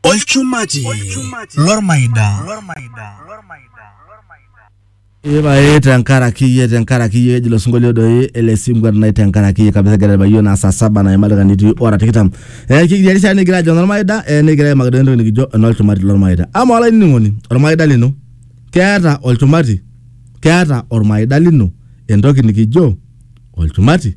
olchumati lormaida Ipae tenkaraki iyie tenkaraki iyie eji ilo sinkolio doi ele sinkwet nai tenkaraki iyie kabisa egira aitabaiki iyiook naa saa saba naima dakikani itii ora tikitam. Eh, kikitii erishata nikigira ajo enormaida eh, nikigira aimaki doi entoki nikijo enolchumati lormaida. Amaa olainining'oni ormaida lino keeta olchumati? Keeta ormaida lino entoki nikijo olchumati?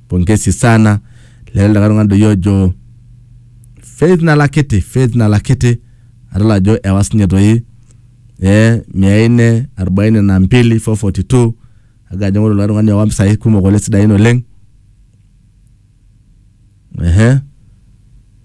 pongesi sana lele likae tung'ani doi ojo faith nalakiti faith nalakiti adol ajo ewa sinye toi eh, mia nne arobaini na mbili 442 aga ajo ng'oru likae tung'ani owa mpisai kumok oleng sidain oleng ehe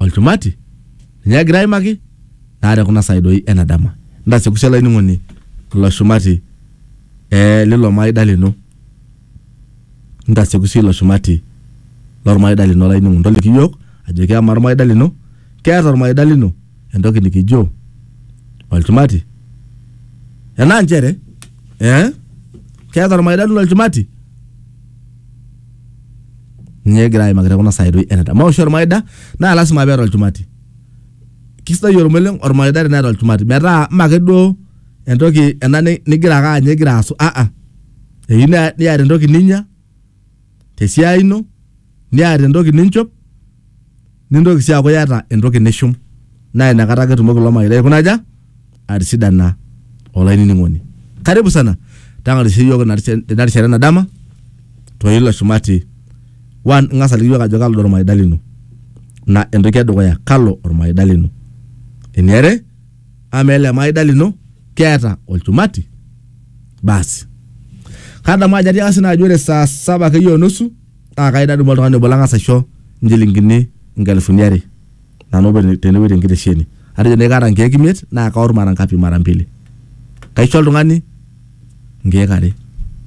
olchumati ninye egira aimaki naa tekuna saai doi ena dama ntasiekushe olainining'oni ilo shumati eh, lilo maida lino ntasiekushe ilo shumati lormaida lino olainining'oni toliki iyiok ajoki amaa ormaida lino keeta ormaida lino entoki nikijo olchumati enaa nchere eh, keeta ormaida lino olchumati ninye egira aimaki tekuna saai toi eneta maoshi ormaida naa lasima peeta olchumati kisidai ormeleng ormaida teneeta olchumati metaa mme ake duo entoki ena ni- nigira ake anya igira asu aa eyieu ne- niata entoki ninya tesiai ino niata entoki ninchop nintoki sii aaku iyata entoki nishum naa inakata ake etumoki ilo marei aikuna aja atisidana olainining'oni. Karibu sana tang'arisho iyiook ina risha- ina rishata ena dama to ilo shumati. One, ing'as aliki iyiook ajo kalo doi ormaida lino. Ina entoki edukuya, kalo ormaida lino. Eniare, amaa ele maida lino keeta olchumati? Basi. Kadamu ajo atiaka sii nanu ajo ore saa saba akeyie o nusu naa kai nadumu oltung'ani obo lang'as aisho inchilingini inkalifuni are nanu openy tenewueji tenkitesheni atejo nai kaata inkeek imiet naa kaor mara ngapi mara mbili kaisho oltung'ani inkeek are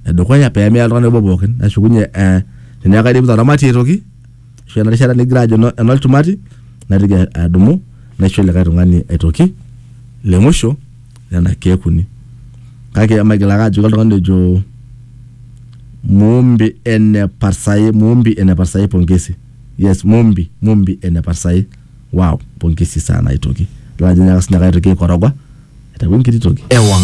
edukuya pemeya oltung'ani obo pookin nashukunye eh, teneeku kaidipita oramatie aitoki ashu ena rishata nigira ajo eno- enolchumati naitoki adumu naisho likae tung'ani aitoki le musho nena keek uni kake emaigil ake ajoki oltung'ani ojo muumbi ene parsai muumbi ene parsai pongesi yes muumbi muumbi ene parsai wow pongesi sana aitoki idol ajo nyaaka sininye ake aitoki aikoroga aitayu enkiti toki ewang'an